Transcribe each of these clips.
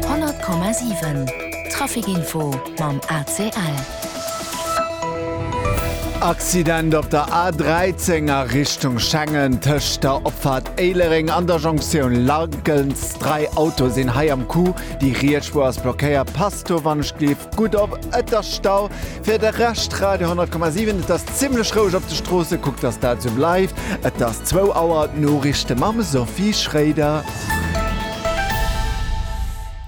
Honnert Komma siwen, Trafikinfo mam ACL. Accident op der A13 a Richtung Schengen, tëscht der Opfahrt Éilereng an der Jonktioun Largens. Dräi Autoe sinn hei am Coup, déi riets Spuer ass blockéiert. Passt do wann ech gleef gutt op, et ass Stau. Fir de Rescht, Radio 10,7, Et ass zimlech roueg op de Stroosse, kuckt dass dat esou bleift. Et ass 2 Auer, d'Noriichte mam Sophie Schroeder.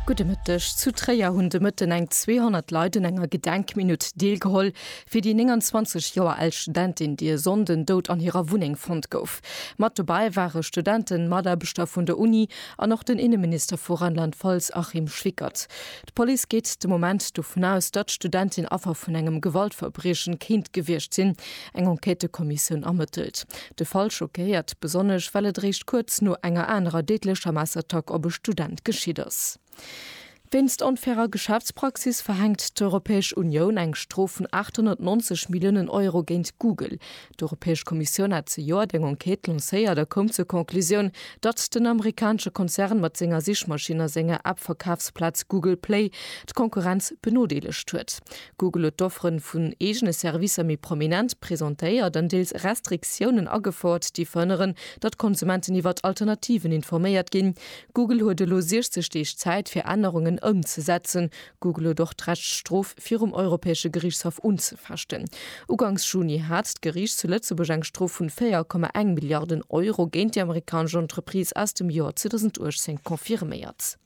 Gudde Mëtteg. Zu Tréier hunn de Mëtten eng 200 Leit un enger Gedenkminutt deelgeholl fir déi 29 Joer al Studentin, déi e Sonnden dout an hirer Wunneng fonnt gouf. Mat dobäi ware Studenten, Mataarbechter vun der Uni an och den Inneminister vu Rheinland-Pfalz Achim Schwickert. D'Police geet de Moment dovun aus, datt d'Studentin Affer vun engem Gewaltverbriechen kéint gewiescht sinn. Eng Enquêtëkommissioun ermëttelt. De Fall schockéiert besonnesch, well et réischt kuerz no enger anerer déidlecher Messerattack op e Student geschitt ass. Wéinst onfairer Geschäftspraxis verhänkt d'Europäesch Unioun eng Strof vun 890 Milliounen Euro géint Google. D'Europäesch Kommissioun hat zejoert eng Enquête lancéiert a koum zur Conclusioun, datt den amerikanesche Konzern mat senger Sichmaschinn a senger App-Verkafsplaz Google Play d'Konkurrenz benodeelegt huet. Google huet d'Offere vun eegene Servicer méi prominent presentéiert an deels Restriktiounen agefouert, déi verhënneren, datt Konsumenten iwwert Alternativen informéiert ginn. Google huet elo 60 Deeg Zäit, fir Ännerungen ëmzesetzen. Google huet och d'Recht d'Strof virum Europäesche Geriichtshaff unzefechten. Ugangs Juni hat d'Geriicht zu Lëtzebuerg eng Strof vun 4,1 Milliarden Euro géint déi amerikanesch Entreprise aus dem Joer 2018 confirméiert.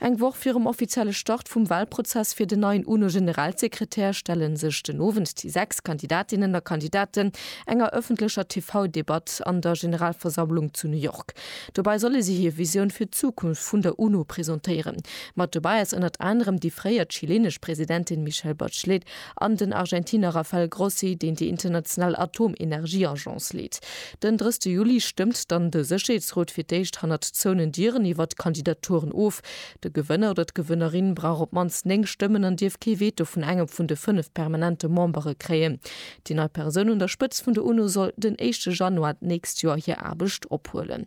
Eng Woch virum offizielle Start vum Walprozess fir den neien UNO-Generalsekretär stelle sech den Owend déi sechs Kandidatinnen a Kandidaten enger ëffentlecher TV-Debatt an der Generalversammlung zu New York. Dobei solle si hir Visioun fir d'Zukunft vun der UNO presentéieren. Mat dobei ass ënnert anerem déi fréier chilenesch Presidentin Michelle Bachelet an den Argentiner Rafael Grossi, deen déi international Atomenergieagence leet. Den 30 Juli stëmmt dann de Sécherheetsrot fir d'éischt hannert zouenen Dieren iwwer d'Kandidaturen of. De Gewënner oder d'Gewënnerin brauch op d'mannst 9 Stëmmen an dierf kee Veto vun engem vun de 5 permanente Membere kréien. Déi nei Persoun un der Spëtzt vun der UNO soll den éischte Januar d'nächst Joer hir Aarbecht ophuelen.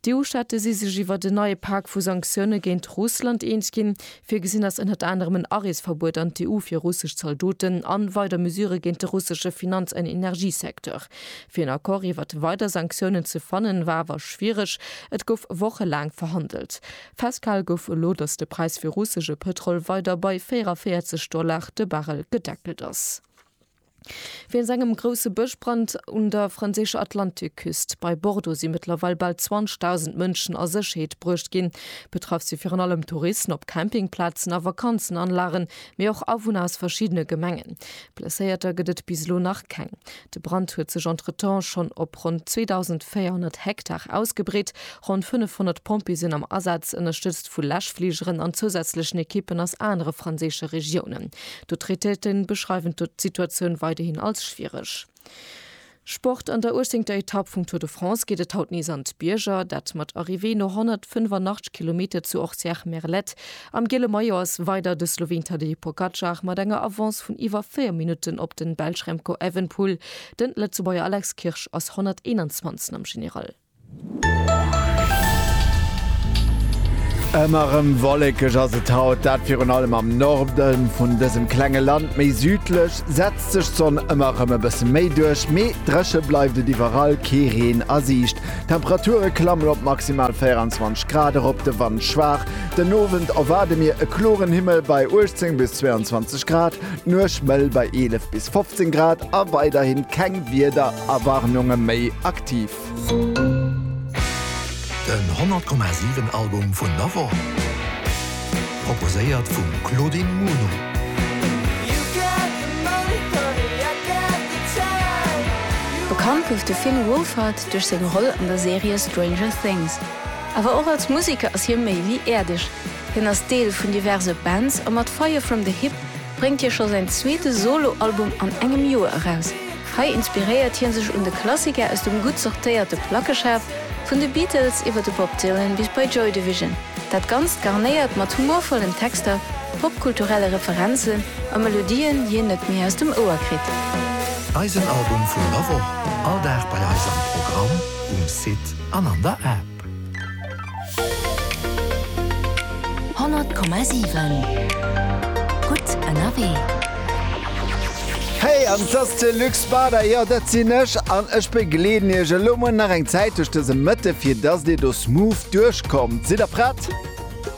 D'EU-Staate si sech iwwert en neie Pak vu Sanktioune géint Russland eens ginn. Virgesinn ass ënnert anerem en Areesverbuet an d'EU fir russesch Zaldoten a weider Mesurë géint de russesche Finanz an Energiesecteur. Fir en Accord iwwert weider Sanktiounen ze fannen, war awer schwiereg. Et gouf wochelaang verhandelt. Festgehal gouf elo, datt de Präis fir russesche Pëtrol weider bei 44 Dollar de Barrel gedeckelt ass. Wéinst engem grousse Bëschbrand un der franséischer Atlantikküst bei Bordeaux si mëttlerweil bal 20.000 Mënschen a Sécherheet bruecht ginn. Betraff si virun allem Touristen op Campingplazen a Vakanzenanlagen, mee och Awunner aus verschiddene Gemengen. Blesséierter gëtt et bis elo nach keng. De Brand huet sech entretemps schonn op ronn 2.400 Hektar ausgebreet. Ronn 500 Pompjeeë sinn am Asaz, ënnerstëtzt vu Läschfligeren an zousätzlechen Ekippen aus anere franséische Regiounen. D'Autoritéite beschreiwen d'Situatioun weiderhin als schwiereg. Sport, An der 18ter Etapp vum Tour de France geet et haut nees an d'Bierger, dat mat Arrivée no 185 Kilometer zu Orcières-Merlette. Am giele Maillot ass weider de Sloween Tadej Pogacar mat enger Avance vun iwwer 4 Minutten op den Belsch Remco Evenepoel. Den Lëtzebuerger Alex Kirsch ass 121. am General. Ëmmer rem wollekeg ass et haut, dat virun allem am Norden vun dësem klenge Land. Méi südlech setzt sech d'Sonn ëmmer rem e bësse méi duerch, mee drëche bleift et iwwerall, kee Reen a Siicht. D'Temperature klammen op maximal 24 Grad erop, de Wand schwaach. Den Owend erwaarde mir e kloren Himmel bei 18 bis 22 Grad, d'Nuecht mëll bei 11 bis 15 Grad a weiderhi keng Wiederwarnunge méi. Den 100 Komma 7 Album vun der Woch, proposéiert vum Claudine Muno. Bekannt gouf de Finn Wolfhard duerch seng Roll an der Serie Stranger Things. Awer och als Museker ass hie méi wéi äerdeg. Hien ass Deel vun diverse Bands a mat Fire From The Hip bréngt hie scho säin zweete Solo-Album an engem Joer eraus. Hei inspiréiert hie sech un de Klassiker aus dem gutt sortéierte Plackeschaf, vun de Beatles iwwer de Bob Dylan bis bei Joy Division. Dat Ganzt garnéiert mat humorvollen Texter, popkulturelle Referenzen a Melodien, déi een net méi aus dem Ouer kritt. Eisen Album vun der Woch, all Dag bei eis am Programm, um Site an an der App. Honnert Komma siwen, gutt ënnerwee. Hey, an t'ass de Luc Spada, jo dat sinn ech, an ech begleeden iech elo muer nach eng Zäit duerch dëse Mëtte fir dass dir do smooth duerchkommt. Sidd der prett?